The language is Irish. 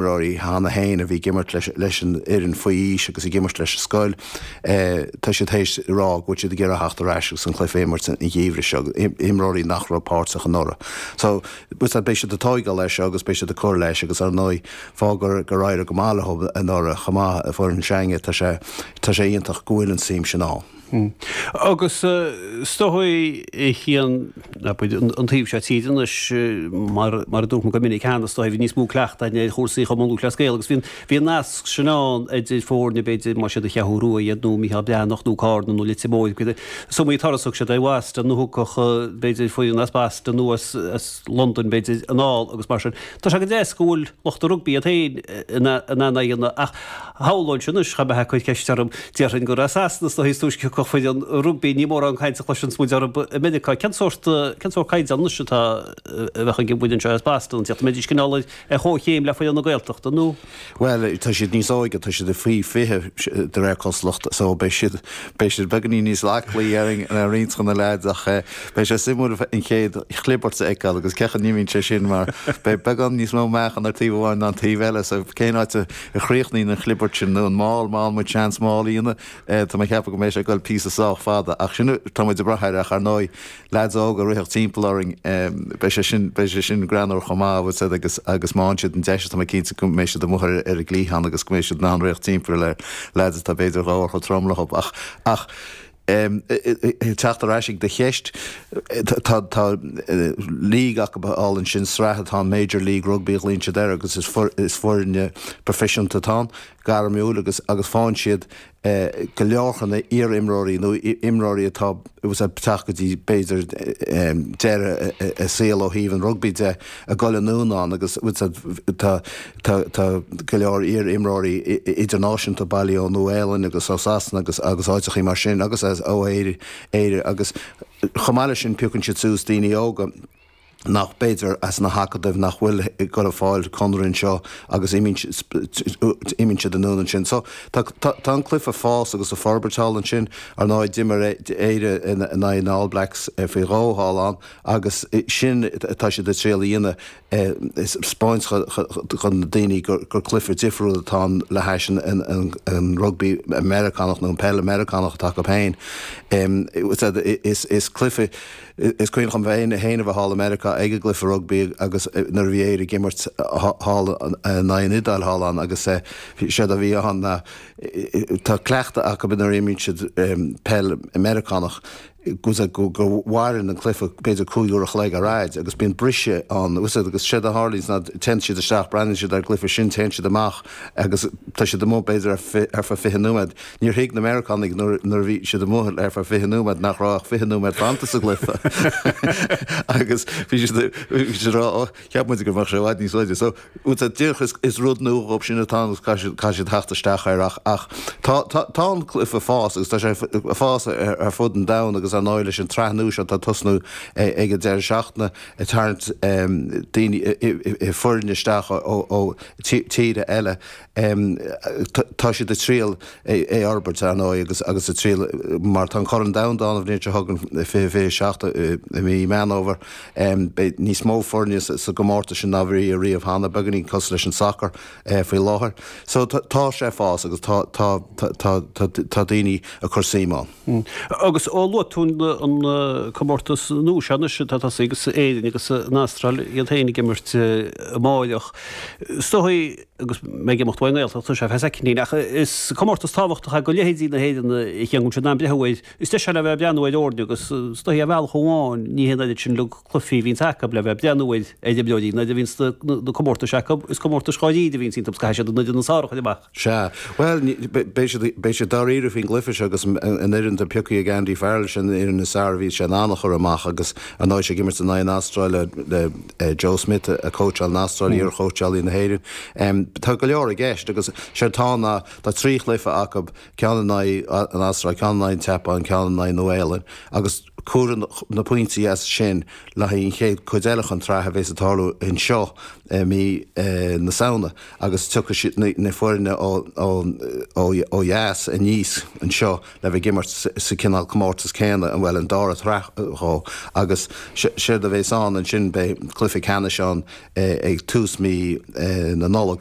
imreoirí cheana féin a bhí ag imirt leis an fhoireann faoi aois agus ag imirt leis an scoil, tá siad tar éis a rá go bhfuil siad ag iarraidh a theacht ar ais agus an cluiche a imirt an geimhreadh seo, imreoirí nach raibh páirteach anuraidh. So, beidh siad ag tóigeáil air seo agus beidh siad ag cur leis agus, ar ndóigh, fág gur éirigh go maith leo anuraidh chomh maith an fhoireann seo againn, tá sé iontach go bhfuil an tsuim sin ann. Hm. Agus is dóigh, a Chian, an taobh seo tíre anois, mar a dúirt mé go minic cheana, is dóigh bhí níos mó cleachtaidh againn ar chúrsaí Chumann Lúthchleas Gael agus bhí an nasc sin ann idir foirne, b'fhéidir, más iad an Cheathrú Rua iad nó Micheál Breathnach nó Cárna nó Leitir Móir, is iomaí turas a thug siad ar Bhoston nó thiocfadh, b'fhéidir, foireann as Boston nó as Londain, b'fhéidir, anall agus mar sin. Tá sé go deas go bhfuil lucht an rugbaí iad féin in ann é a dhéanamh ach, Shamhlóinnse, anois, dhá mbeifeá ag cur ceist orm. Déarfainn gur as Sasana nó áit is túisce a thiocfadh foireann rugbaí, ní mórán caint a chloiseanns muid orthu i Meiriceá. Cén sórt, cén sórt caighdeán, anois, atá, a bheadh ag an bhfoireann seo as Boston ag tíocht? An mbeidís cineál ar chomhchéim le foireann na Gaeltachta nó? Bhuel, tá siad níos óige, tá siad faoi fiche de réir cosúlachta, so beidh siad, beidh siad beagainín níos aclaí ar roinnt de na leaids ach eh, Beidh sé suimiúil an chéad chlibirt a fheiceáil agus cén chaoi a n-imíonn sé sin mar beidh beagán níos mó meáchan ar taobh amháin ná an taobh eile so cén áit a chríochnaíonn an chlibirt sin nó an maul, má fhaigheann muid seans maul a dhéanamh? Tá mé ag ceapadh go mbeidh sé ag dul píosa sách fada ach sin tá muid ag brath air ach ar ndóigh leaids óga a rithfeadh timpeall orainn beidh sé sin, beidh sé sin greannmhar chomh maith bhfuil a fhios agat, agus má fhaigheann siad an deis tá mé cinnte go mbeidh siad amuigh ar an gcliathán agus go mbeidh siad in ann rith timpeall ar leaids atá b'fhéidir dhá uair chomh trom leo ach, ach. ag teacht ar ais ag do cheist, tá league acu thall ansin, sraith atá ann, Major League Rugby a ghlaíonn siad air agus is foirne proifisiúnta atá ann, gairmiúil agus agus faigheann siad go leor de na iar-imreoirí nó imreoirí atá ag teacht go dtí b'fhéidir deireadh a saol ó thaobh an rugbaí de, ag dul anonn ann agus tá. Tá go leor iar-imreoirí idirnáisiúnta bailithe ón Nua-Shéalainn agus ó Sasana agus áiteachaí mar sin agus ó Éire agus chomh maith leis sin piocann siad suas daoine óga nach b'fhéidir as na hacadaimh nach bhfuil ag dul ag fáil conradh anseo agus imíonn siad anonn ansin. So tá an cluiche ag fás agus ag forbairt thall ansin. Ar ndóigh d'imir Éire in aghaidh na All Blacks faoi dhó thall ann agus sin atá siad ag triail a dhéanamh. 'spáint do na daoine gur cluiche difriúil atá ann le hais an rugbaí Meiriceánach nó an peil Mheiriceánach atá acu féin. Is cluiche, is cuimhin liom féin a bheith thall i Meiriceá ag an gcluiche rugbaí agus nuair a bhí Éire ag imirt thall in aghaidh an Iodáil thall ann agus séard a bhí ann ná, tá cleachtadh acu nuair a imríonn siad peil Mheiriceánach, Usaid go go mhaireann an cluife b'fhéidir cúig uair a chloig ar fhaid agus bíonn briseadh ann. Sea agus séard a tharlaíonns ná téann siad isteach, breathnaíonn siad ar an gcluife sin, téann siad amach agus tá siad amuigh b'fhéidir ar ar feadh fiche nóiméad. Níor thuig na Meiriceánaigh nuair nuair a bhí siad amuigh ar feadh fiche nóiméad nach raibh ach fiche nóiméad fanta sa gcluife agus bhí siad bhí siad a rá oh cheap muid go mbeadh sé i bhfad níos faide so Tá, díreach, is rud nua dhóibh sin atá ann agus caithfidh siad theacht isteach air ach tá, tá an cluife ag fás agus tá sé ag fás ar fud an domhain agus ar ndóigh leis an tsraith nua seo atá ag tosnú ag an deireadh seachtaine ag tarraingt daoine, foirne isteach ó tíortha eile. Tá siad ag triail é a fhorbairt, ar ndóigh, agus agus ag triail, mar tá an Corn Domhanda ann an bhliain seo chugainn, i fiche fiche seacht i mí Meán Fhómhair. Beidh níos mó foirne sa gcomórtas sin ná bhí riamh cheana, beagáinín cosúil leis an sacar faoi láthair. So tá sé ag fás agus tá tá tá tá tá daoine ag cur suim ann. Agus ó luaigh tú an comórtas nua seo anois atá tosaithe agus Éirinn agus an Astráil iad féin ag imirt amárach, is dóigh, agus mé ag imeacht uaidh an nGaeltacht, tá sé ar feadh soicind, ach is comórtas tábhachtach é do leithéidí na hÉireann a cheangail siad am breithimh uair. Is deis é le bheith ag breathnú ar fhoirne agus is dóichí ar bhealach amháin ní hé an oiread sin cluifí a bhíonns acu le bheith ag breathnú ar imreoirí, nuair a bhíonns na comórtais acu, is comórtais dháiríre a bhíonns iontu agus caithfidh siad an fhoireann is fearr a chur amach. Sea. Bhuel, beidh siad dáiríre faoin gcluiche seo agus an fhoireann atá pioctha ag Andy Farrell, sin an fhoireann is fearr a bhí sé in ann a chur amach agus, Ar ndóigh, is ag imirt in aghaidh an Astráil le Joe Schmidt ag cóitseáil an Astráil, iarchóitseálaí na hÉireann. Tá go leor i gceist agus séard tá ná tá trí chluiche acu, ceann in aghaidh an Astráil, ceann in aghaidh an tSeapáin, ceann in aghaidh Nua-Shéalainn agus cuirfear na pointí as sin le haghaidh an chéad chuid eile den tsraith a bhéas ag tarlú anseo i mí na Samhna agus tiocfaidh na foirne ó dheas aníos anseo. le bheith ag imirt sa chineál comórtas céanna, bhuel, an dara sraith dhó agus séard a bheas ann ansin, beidh cluiche ceannais ann ag tús mhí na Nollag,